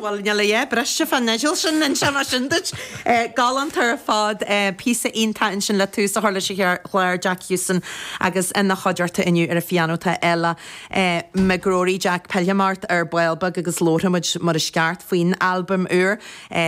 Bhuel, níl a dhath briste fán fhidil sin, inseoidh mé sin duit. Galánta ar fad. Píosa iontach ansin le tús a chur leis an chlár, Jack Houston agus ina chuideachta inniu ar an phianó tá Ella McGrory, Jack, pillfidh mé ort ar ball beag agus labharfaidh muid mar is ceart faoin albam úr.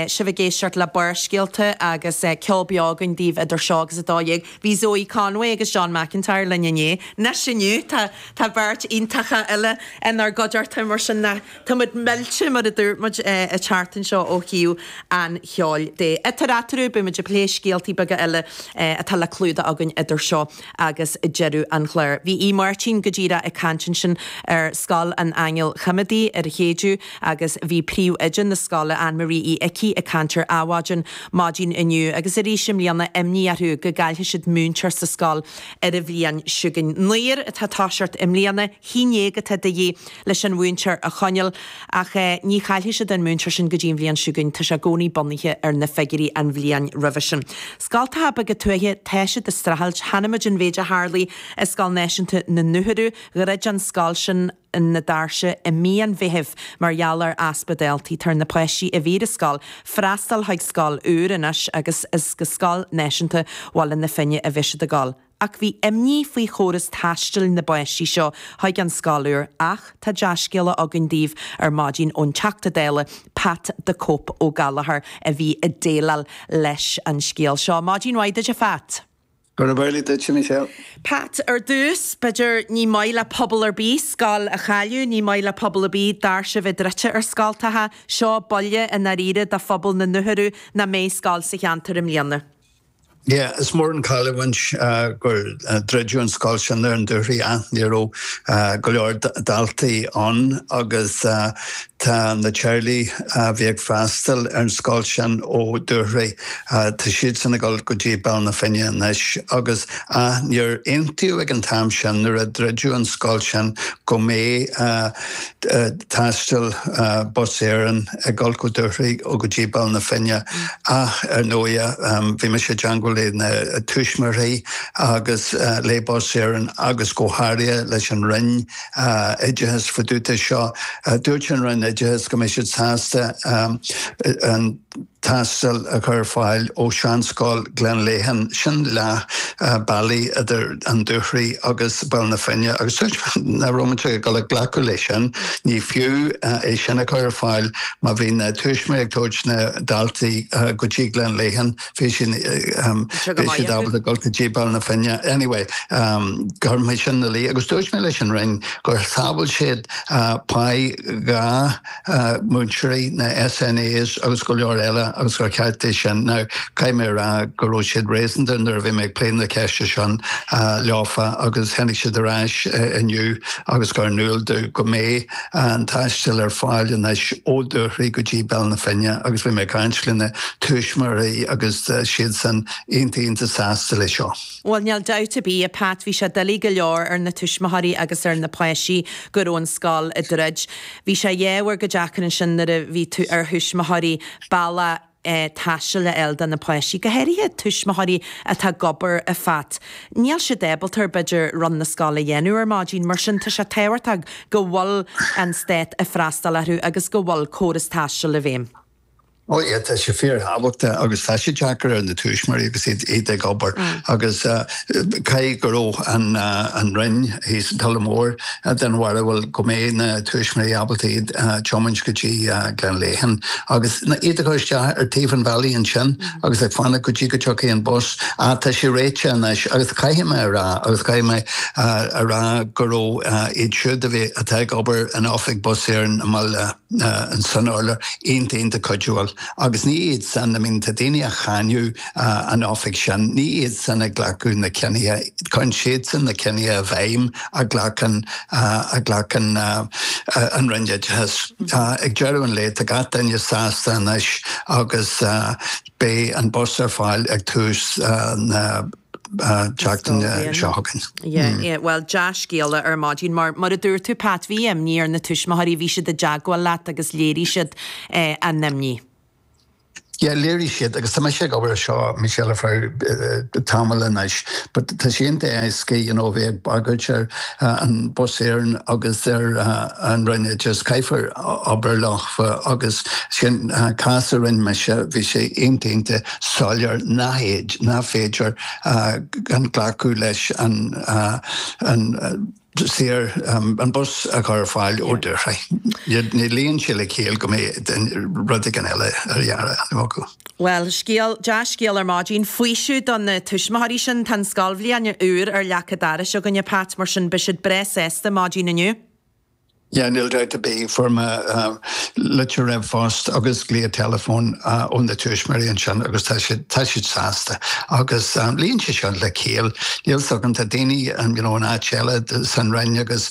Sibh ag éisteacht le Barrscéalta agus ceol beo againn daoibh idir seo agus a dó dhéag. Bhí Zoe Conway agus John McIntyre linn inné. Anois inniu tá. Tá beirt iontacha eile inár gcuideachta, mar sin tá muid millte, mar a dúirt muid an tseachtain seo, ó thaobh an cheoil de. Idir eatarthu, beidh muid ag plé scéaltaí beaga eile atá le clúdach againn idir seo agus deireadh an chláir. Bhí Aodh Máirtín go díreach ag caint ansin ar Scoil an Aingil Choimhéadaí ar an Chéideadh agus bhí príomhoide na scoile, Anne Marie Uí Icí, ag caint ar Adhmhaidin maidin inniu agus arís i mbliana imní orthu go gcaillfidh siad múinteoir sa scoil ar an bhliain seo chugainn. Naonúr atá ag toiseacht i mbliana, a haon déag atá de dhíth leis an mhúinteoir a choinneáil, ach ní chaillfidh siad an múinteoir sin go dtí an bhliain seo chugainn, tá sé i gcónaí bunaithe ar na figiúirí an bhliain roimhe sin. Scoltacha beaga tuaithe, tá siad ag streachailt, chonaic muid an mhéid a tharlaigh i Scoil Náisiúnta na nDúchoradh, gur dhruid an scoil sin, na doirse i mí an Mheithimh mar gheall ar easpa daltaí. Tá ar na páistí a bhí ar an scoil freastal chuig scoil úr anois agus is go Scoil Náisiúnta Bhaile na Finne a bheidh siad ag dul. Ach bhí imní faoi chóras taistil na bpáistí seo chuig an scoil úr ach tá dea-scéala againn daoibh ar maidin ón Teachta Dála Pat the Cope Ó Gallchóir a bhí ag déileáil leis an scéal seo. Maidin mhaith duit a Phat! Gurab amhlaidh duitse, a Michelle. Pat, Ar dtús, b'fheidir, ní maith le pobal ar bith scoil a chailleadh, ní maith le pobal ar bith doirse a bheith druidte ar scoltacha. Seo buille i ndáiríre do phobal na nDúchoradh nach mbeidh scoil sa cheantar i mbliana. Yeah, is mór an cailliúint gur druideadh an scoil sin ar an Dúchoraidh, ach ní raibh go leor daltaí ann agus Tá na teaghlaigh a bhí ag freastal ar an scoil sin ó Dúchoraidh, tá siadsan ag dul go dtí Baile na Finne anois agus níor aontaíodh ag an t-am sin nuair a druideadh an scoil sin go mbeidh taisteal Bus Éireann ag dul ó Dúchoraidh go dtí Baile na Finne ach ar ndóighe bhí mise i dteangmháil le na tuismitheoirí agus le Bus Éireann agus go háirithe leis an Roinn oideachais fá dtaobh de seo. Dúirt an Roinn Oideachais go mbeidh siad sásta an taisteal a chur ar fáil ó Sheanscoil Ghleann Léithín, sin leath bealaí idir an Dúchoraidh agus Baile na Finne, agus dúirt mise nach raibh muid ag dul a ghlacadh leis sin, ní fiú é sin a chur ar fáil má bhí na tuismitheoirí ag tabhairt na daltaí go dtí Gleann Léithín. bhí sin bhí siad ábalta dul go dtí Béal na Finne. Anyway, chuir mé sin ina luí agus dúirt mé leis an Roinn gur shábháil siad páí dhá mhúinteoir is na SNAs agus go leor eile agus gur ceart é sin. Now, caithfidh mé a rá go raibh siad réasúnta nuair a bhí mé ag plé na ceiste sin leofa agus tháinig siad ar ais inniu agus cuireadh in iúl domh go mbeidh an taisteal ar fáil anois ó Dhúchoraidh go dtí Béal na Finne agus bhí mé ag caint leis na tuismitheoirí agus tá siadsan iontach iontach sásta leis seo. Bhuel, níl dabht ar bith, a Pat, bhí sé doiligh go leor ar na tuismitheoirí agus ar na páistí go raibh an scoil ag druid. Bhí sé an-deacair ansin nuair a bhí ar thuismitheoirí bealach, taistil a fháil do na páistí, go háirithe tuismitheoirí atá ag obair ar fad. Níl siad ábalta, b'fhéidir, run na scoile a dhéanamh ar maidin, mar sin tá sé tábhachtach go bhfuil an stát ag freastal orthu agus go bhfuil córas taistil i bhfeidhm. Oh yeah, tá sé fíorthábhachtach agus tá sé deacair ar na tuismitheoirí agus iad ag obair agus. Caithfidh go raibh an Roinn thíos i dTulach Mhór den bharúil go mbeadh na tuismitheoirí ábalta iad a tiomáint go dtí Gleann Léithín agus iad a chur isteach ar taobh an bhealaigh ansin agus ag fanacht go dtí go dtiocfadh an bus. Tá sé réite anois agus caithfidh mé a rá agus caithfidh mé a rá go raibh iad siúd a bhí, atá ag obair in Oifig Bus Éireann i mBaile. an tSratha iontach cuidiúil, agus ní iad san, bíonn daoine ag cáineadh an oifig sin, ní iad san a ghlacann na cinntí, cuireann siadsan na cinntí i bhfeidhm a ghlacann a ghlacann an Roinn Oideachais. Ag deireadh an lae, tá gach duine sásta anois agus. Beidh an bus ar fáil ag tús na seachtaine seo chugainn. Yeah, bhuel, dea-scéala ar maidin mar, mar a dúirt tú Pat, bhí imní ar na tuismitheoirí, bhí siad i dteagmháil leat agus léirigh siad a n-imní. Yeah, léirigh siad agus tá mise ag obair ar seo, Michelle, ar feadh tamaill anois but tá sé iontach furasta, you know, a bheith ag bagairt ar Bus Éireann agus ar an Roinn Oideachais, caithfear obair leo. agus sin cás a rinne mise, bhí sé iontach iontach soiléir nárbh fhéidir gan glacadh leis an bus a chur ar fáil ó Dhúchoraidh. Ní luíonn sé le ciall go mbeadh rud éigin eile á dhéanamh acu. Bhuel, scéal, dea-scéal ar maidin, faoiseamh do na tuismitheoirí sin. Tá an scoilbhliain úr ar leac an dorais againne, Pat, mar sin beidh siad breá sásta maidin inniu. Yeah, níl dabht ar bith, fuair mé litir ríomhphost agus glao teileafóin ó na tuismitheoirí ansin agus tá siad sásta agus luíonn sé seo le ciall, Níl a fhios agam tá daoine you know in áit eile san Roinn agus